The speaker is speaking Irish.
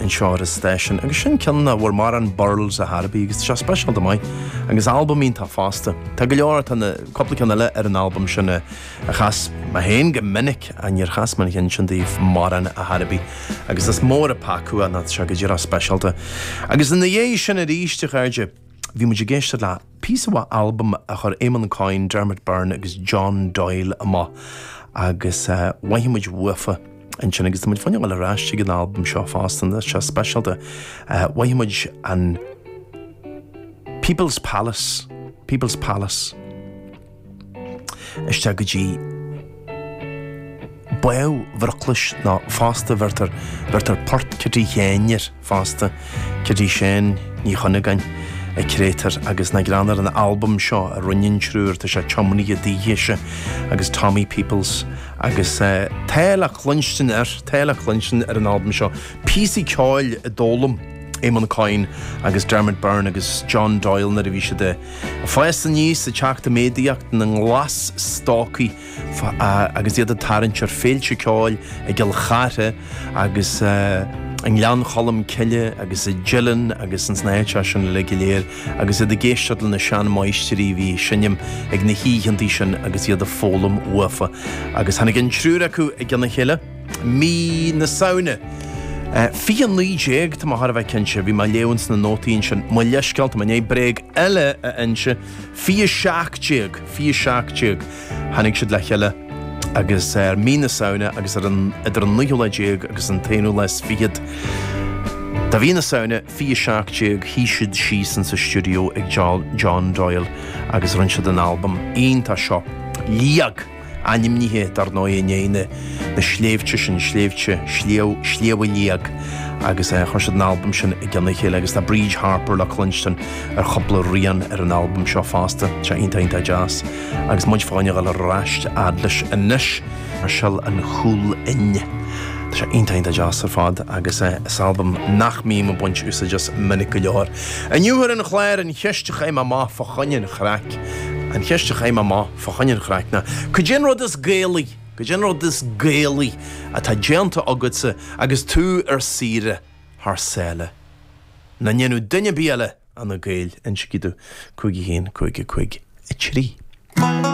anseo ar an stáisiún agus sin ceann de bhur marán Burls a Harvey agus tá sé speisialta maith agus albam iontach fosta. Tá go leor, tá cúpla ceann eile ar an albam sin a chas mé féin go minic ach níor chas mé an ceann sin taobh marán a Harvey agus is mór an peaca nó tá sé go díreach speisialta. Agus ina dhiaidh sin arís, a chairde, Bhí muid ag éisteacht le píosa mhaith albaim a chuir Éamonn Coyne, Dermot Byrne agus John Doyle amach agus mhothaigh muid uafa ansin agus tá muid fá choinne a ghoil ar ais chuig an albam seo fosta nó tá sé speisialta. Mhothaigh muid an People's Palace, People's Palace. isteach go dtí baill bhroclais nó fosta bheirtear bheirtear Port Chití Sheáin air fosta Cití Sheáin Ní Chuinneagáin an créatúr agus na greann ar an albam seo a rinne an triúr tá sé tiomnaithe dithese agus Tommy Peoples agus tá le cluinstin ar tá le cluinstin ar an albam seo píosaí ceoil a d'fhoghlaim Éamonn Coyne agus Dermot Byrne agus John Doyle nuair a bhí siad Fás aníos is ag teacht i méadaíocht ina nglas-stócaigh agus iad ag tarraingt ar féilte ceoil i gCill Chartha agus i nGleann Cholm Cille agus i dTeileann agus ins na háiteacha sin uilig go léir agus iad ag éisteacht le na sean-mháistirí a bhí ag seinm ag na hoícheanntaí sin agus iad ag foghlaim uafa. Agus tháinig an triúr acu i gcionn a chéile. mí na Samhna. 2019, tá mé thar a bheith cinnte, bhí mé ag léamh ins na nótaí ansin, mo leithscéal, tá mé i ndiaidh bréag eile a inse, 2017, 2017, tháinig siad le chéile agus ar mí na Samhna agus ar an, idir an naoú lá déag agus an t-aonú lá is fichead de mhí na Samhna, 2017, shuigh siad síos insa stiúideo ag John Doyle agus rinne siad an albam iontach seo, Liag. Ainmnithe, dar ndóigh, i ndiaidh na sléibhte sin, sléibhte Shliabh a Liag, agus chuir siad an albam sin i gcionn a chéile, agus tá Bríd Harper le cluinstin ar chúpla rian ar an albam seo fosta. Tá sé iontach, iontach deas. Agus muid fá choinne a ghoil ar ais a fhad leis anois, ar shil an chúlfhinn. Tá sé iontach, iontach deas ar fad, agus is albam nach mbím ag baint úsáid as minic go leor. Inniu ar an chlár, an cheist a chaith mé amach fá choinne an chraic, an cheist a chaith mé amach, fá choinne an chraic, ná cad é an rud is Gaelaí, cad é an rud is Gaelaí atá déanta agatsa agus tú ar saoire thar sáile? Nach ndéanfadh duine ar bith eile ach na Gaeil, insigí domh, 5 1 5 5 3.